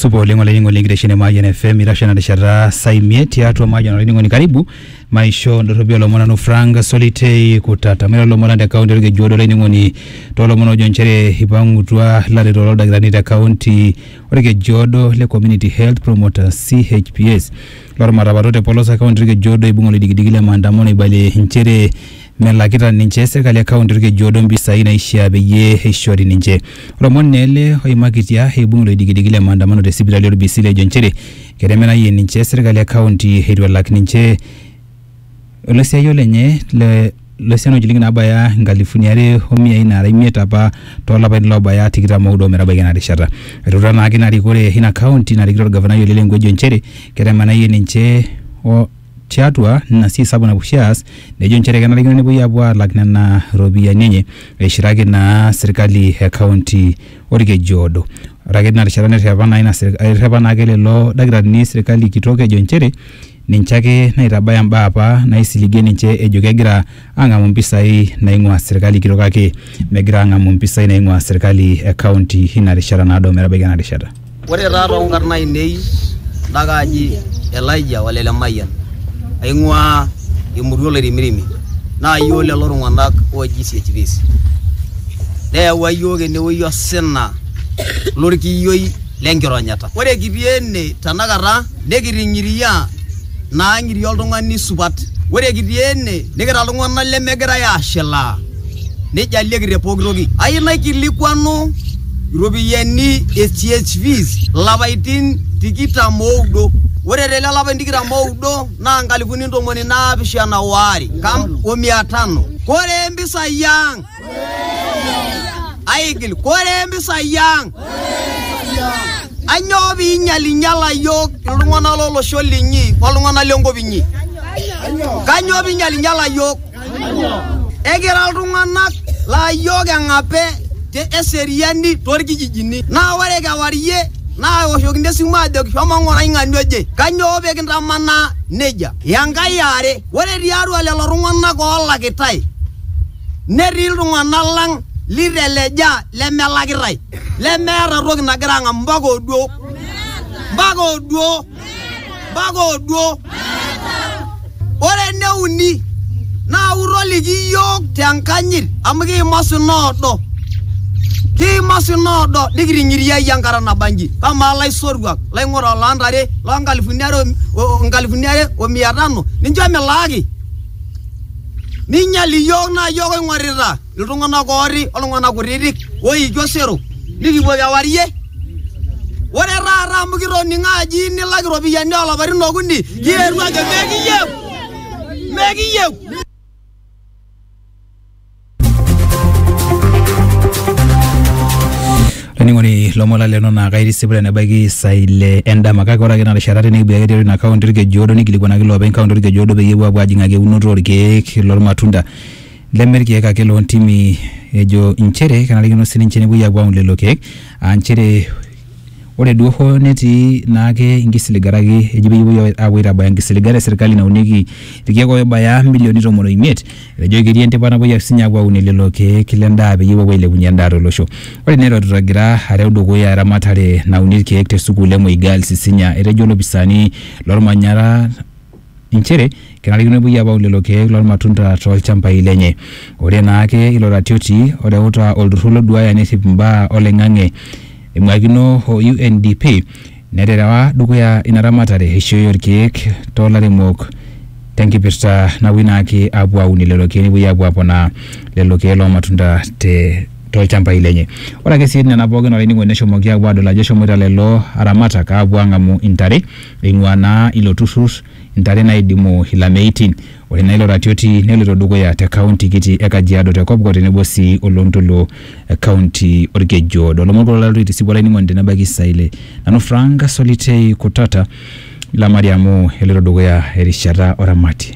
supa oleng olainining'oni enkitesheni e Mayian FM itasho ena rishata saa imiet tiatua Mayian olainining'oni karibu maisho ndorropi olomon nanu Frank Solitei Kutata mairo lomon lang te kaunti Olkejuado olainining'oni toolomon oojo nchere ipang'utua ilaretok loldakitarini te kaunti Olkejuado le Community Health Promoters CHPS lormatapato te polos e kaunti Olkejuado eibung'a oloidikidiki le maandamano eibalie nchere melakita ninche serkali e kaunti Olkejiodo mpisai naishiaa peyie eishori ninche. Lomon naa ele oimakitia eibung iloidikidiki le maandamano te sipitali o Lbisili ejo nchere ketemenayie ninche serkali e kaunti eitu elak ninche oloisiayio lenye le lo siana o nchilingini naabaya nkalifuni are o miai naara imiet apa too lapaitin loobaya tikitam oudo o metabaiki ena rishata. Etuuta naake ina rikore ina kaunti narikito olgavanai Ole Lenku ejo nchere ketemenayie ninche o tiatua nina sii sapuk napuo oshi aas nejo nchere kenarikino nepuoi apuo aalak nena ropiyiani enye eishiraki naa sirkali e kaunti Olkejiodo. Ore ake tina rishata nerrepa naa ina sirk- errepa naake lelo dakitarini sirkali kitok ejo nchere ninche ake naitabaya mbaa apa naisiligie ninche ejo kegira ang'amu mpisai naing'ua serkali kitok kake megira ang'amu mpisai naing'ua serkali e county ina rishata naado metabaiki ena rishata. Ore taa too nkarn aainei nda kaaji Elijah ole Lemayian, aing'uaa emurua Oloirimirimi naa iyiook lelo tung'anak ooji CHPs. Neyawua iyiook ene wueji osina lorkiyioi le nkironyata. Ore kitii ene tenakata nikiting'iria naa ng'iria oltung'ani supat. Ore kitii ene nikira iltung'anak lemegirai aashilaa nijalieki te pooki toki. Ayeu naikilikuanu iropiani e CHV ilapaitin tikitam o udo, ore te lelo apaitin tikitam o udo naa nkalifuni ntomoni naapishana o are o mia tano. Kore mpisai ang'. aigil kore mpisai ang anyoo piinyalinyala yiok iltung'anak lolosho linyi oltung'anak lenkop inyi kanyoo piinyalinyala yiok ekira iltung'anak laa yiok eng'ape te eseriani torkijijini naa ore kewarie naa eoshokini esimu ajoki shomo ng'orai ng'ania oje kanyoo pikintamanaa nejia enkai eare ore tiatua lelo tung'anak olakitai Netii iltung'ana lang liteleja lemelakitae lemeeta toki nagira ang'am mpaka oduo mpaka oduo mpaka oduo. Ore ene uni naa utoliki iyiook te nkanyit amu kiima osina oodo kiima osina oodo nikiting'iriayie enkata nabanji. Kamaa ilaisotuak, ilaing'urok loo ntare loo nkalifuni are o nkalifuni are o mia tano ninche milaaki? Ninyal iyiook naa iyiook oing'orita iltung'anak ooti oltung'anak kutitik oiki osero nikipuo kewarie. Ore taata amu kitoning'o aji nilak iropiyiani oo lapaitin okuni kietuo ajo mekiyieu, mekiyieu. Olainining'oni lomon laleno naa kaitisip tenebaiki isaai ile endama kake ore ake ina rishata tenikipuo ake tiatua ina kaunti Olkejuodo nikilikuanaki iloopeny kaunti Olkejuodo peyie epuo apuo ajing'aki eunoto orkeek lormatunda leme irkeek ake loontimi ejo inchere kenarikino sininche nepuoi apuo aun lelo keek aa inchere ore duo hoo netii naake inkisiligat kake eji peyie epuoi apuo aitabaya inkisiligat esirkali naunieki irkeek oibaya imilioni tomon oimiet Etejo ketii endipa napuoi ake sinye apuo aunie lelo keek le ndaa peyie epuo apuo ailepunye endaa to losho. Ore ina elototo egira areu dukuya eramatare nauni ilkeek te sukuul e Moi Girls Isinya, etejo ilopisaani lo lmanyara inchere kenarikino nepuoi apuo aun lelo keek loo lmatunda too lchambai lenye. Ore naa ake ilo ratioti oreuta olturrur loduaya nerrip imbaa oloing'ang'e eing'uakino o UNDP, Neterewa dukuya ina ramatare eishoi oo lkeek too lairemok te nkipirta napuoi naake apuo aunie lelo keek nepuoi apuo aponaa lelo keek loo matunda te too lchambai lenye. Ore ake sii nena pookin olainining'oni neshomoki apuo adol ajo eshomoita lelo aramatak apuo ang'amu intare eing'ua naa ilo turrur intare naaidimu ilameitin. Ore naa ilo ratioti neloito dukuya te kaunti kiti e Kajiado te Kopkop tenebo sii o loo Ntoluo kaunti olkeju oodo. Ilomon kulo laloito aitisipu olainining'oni tene baiki saa ile. Nanu Frank Solitei Kutata ilo maria amu eloito dukuya erishata o ramatie.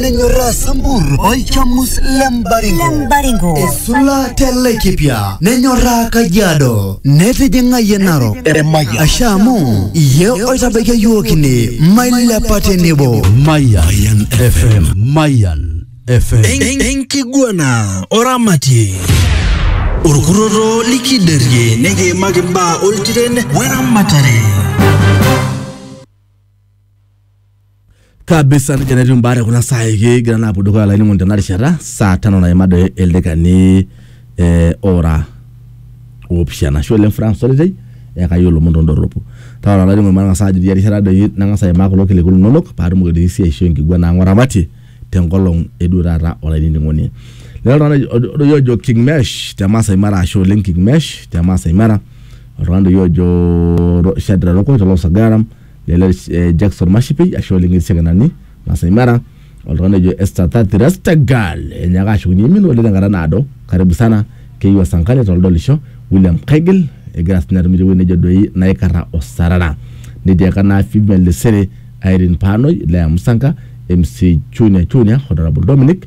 nenyorraa sambur olchamus le mbaringo Lembaringo. esula te laikipia nenyorraa kajiado netijing'ayie narok asha amu iye oitabaikia yiok ine mailepa tenebo Mayan FM. Mayan FM. En- enkiguana oramatie orkurroto likiderie nikiimaki imbaa oltiren weramatare kabisa nejia netiu imbaa te kuna saai kigira naa apuo dukuya olainining'oni tena rishata saa tano naima doi ildakikani eh, ora oopishana ashe oleng Frank Solitei eyakaki olomon tondorropu taata olainining'oni matang'asa ajo tia rishata doi nang'as aimaa kulo kiliku linonok paatumoki doi sii aishoo enkiguana ang oramatie tenkolong eduo taata olainining'oni lelo tung'anak ojo- doi ojo King Mesh te Maasai Mara ashe oleng King Mesh te Maasai Mara oltung'ani doi ojo Ro- Shadrack Rokoi tolosagaram lele eh, Jackson Mashipei ashe oleng etii Sekenani Masai Mara oltung'ani ojo Esther Thathi Rastagal enyaaka ashukunye imin oleng tenkata naado karibu sana keyieu Asankale toldolisho William Kaigil egira sinye atum tewueji nejo doi naikarra osarara nitiaka naa Female Lesere Irene Panoi Lea Musanka MC Chunya Chunya Honorable Dominic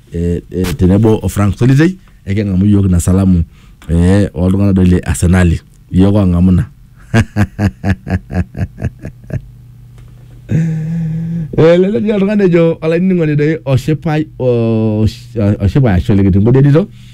eh, eh, tenebo o Frank Solitei ekeng'amu iyiook ina salamu eh, oltung'anak doi le Arsenali iyiook oong'amu ina elelek dii oltung'ani ejo olainining'oni doi oshipai osh- oshipai ashu olikiting'odienito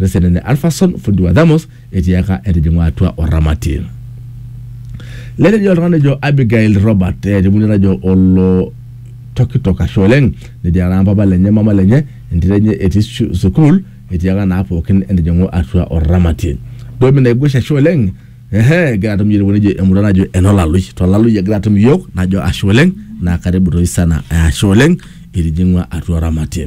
Resenene Alpherson, fundi wa Thamos, etiaka etijing'ua atua oramati. Netejo oltung'ani ojo Abigail Robert, etibuni najo olo tokitok ashe oleng, netiaka naa mpapa lenye mama lenye, entito enye etii su- sukuul, etiaka naa pookin entijing'u atua oramati. Domi naigush ashe oleng, ehe, egira atum iyiook tewueji najo emurua najo enolalui. Tolalui egira atum iyiook, najo ashe oleng, naa karibu toi sana, ashe oleng, itijing'ua atua oramati.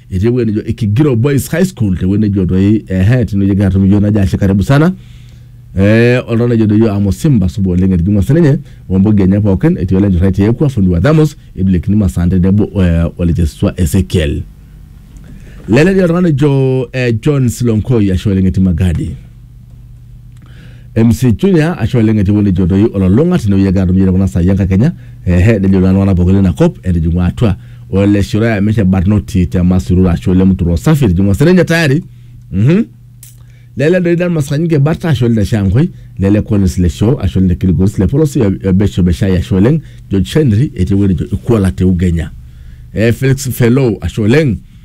etii ewueji nejo Ikigiro Boys High School te wueji nejo doi ehe tine wueji egira atum iyiook najo ashe karibu sana eh oltau nejo doi iyiook amo Simba supa oleng etijing'ua sininye ombogi enye pookin etii ole Njurai te Ekwa fundi wa Thamos Ebilekini Masaa tenebo eh, ole Chesiswa Ezekiel lele dii oltung'ani ojo eh, John Silonkoi ashe oleng etii Magadi MC Junior ashe oleng etii ewueji nejo doi ololong'a tinewueji egira atum yie tekuna saai enkakenya ehe nejo naa iltung'anak pookin lina kop etijing'ua atua ole Shiroi amishe barnoti te Masururu ashe oleng mturo safi etijing'ua sininye tayari mhm lele doi dan maskanyike barta ashe oleng te Shangwe lele Collins le show ashe oleng te Kilgoris le polosi ebesho beshai ashe oleng George Henry etii ewueji nejo Ikuala te Ugenya eh, Felix Feloo ashe oleng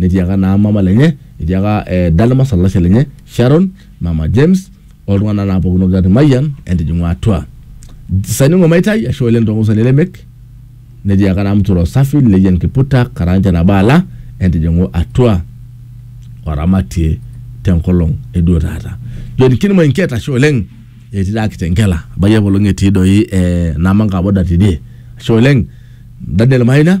netiaka naa mama lenye etiaka eh, Dalmas olalashe lenye Sharon mama James oltung'anak naa pookin ogira Mayian entijing'u atua saningo maitai ashe oleng tongosani lemek netiaka naa mtoro safi leyian kiputa karanja nabaala entijing'u atua oramatie tenkolong eduo taata John Kinmoi Nket ashe oleng etii taa Kitengela abayie apaelong etii doi eh, Namanga boda tidie ashe oleng Daniel Maina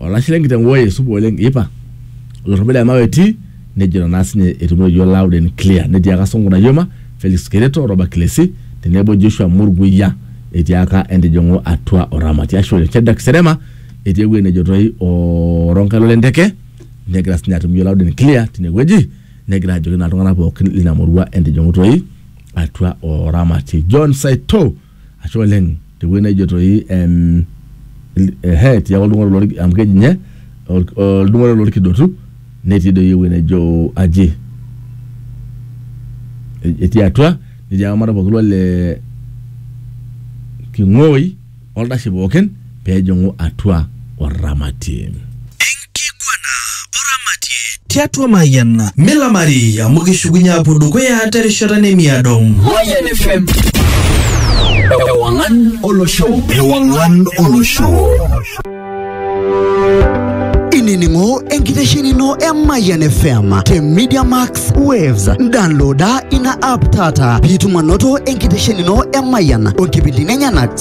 olashe lenkiteng woi supa oleng ipa olorrobo le mawe etii nejo naa sinye etumoyio loud and clear netiaka Sonko Nayoma Felix Kereto Robert Kilesi tenebo Joshua Murguya etiaka entijing'u atua oramati ashe oleng Shadrack Serema etii ewueji nejo toi o Ronkai lole nteke negira sinye atum iyio loud and clear tinewueji negira ajoki naa iltung'anak pookin lina murua entijing'u toi atua oramati John Saito ashe oleng tewueji naijo toi em, il- ehe etii ake oltung'ani lor- amu keji ninye ol- oltung'ani lorkidotu netii doi ewueji naijo aji E- etii atua netii eramatare pookin ole king'oi oldashe pookin pejing'u atua oramatie. Enkiguana oramatie. Tiatua Mayian. Milamari amu kishukunye apuo dukuya terishata nemiado. Mayian FM. Ewang'an olosho. Ewang'an olosho. Inining'o enkitesheni ino e Mayian FM te Media Max Waves. Downloada ina app taata piitum anoto enkitesheni ino e Mayian o nkipindini enyenak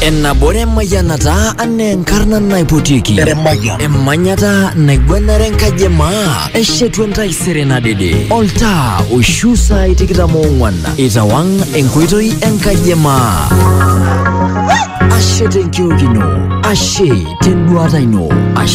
Ennabore mayanata ane enkarna naipotiki. Emanyata naigwenare enkaji emaa. Eshetu entaisere nadede. Oltaa oishu saai tikitam oong'wan. Itawang enkoitoi enkaji emaa. Ashe tenkiok ino. Ashe tenduata ino. Ashe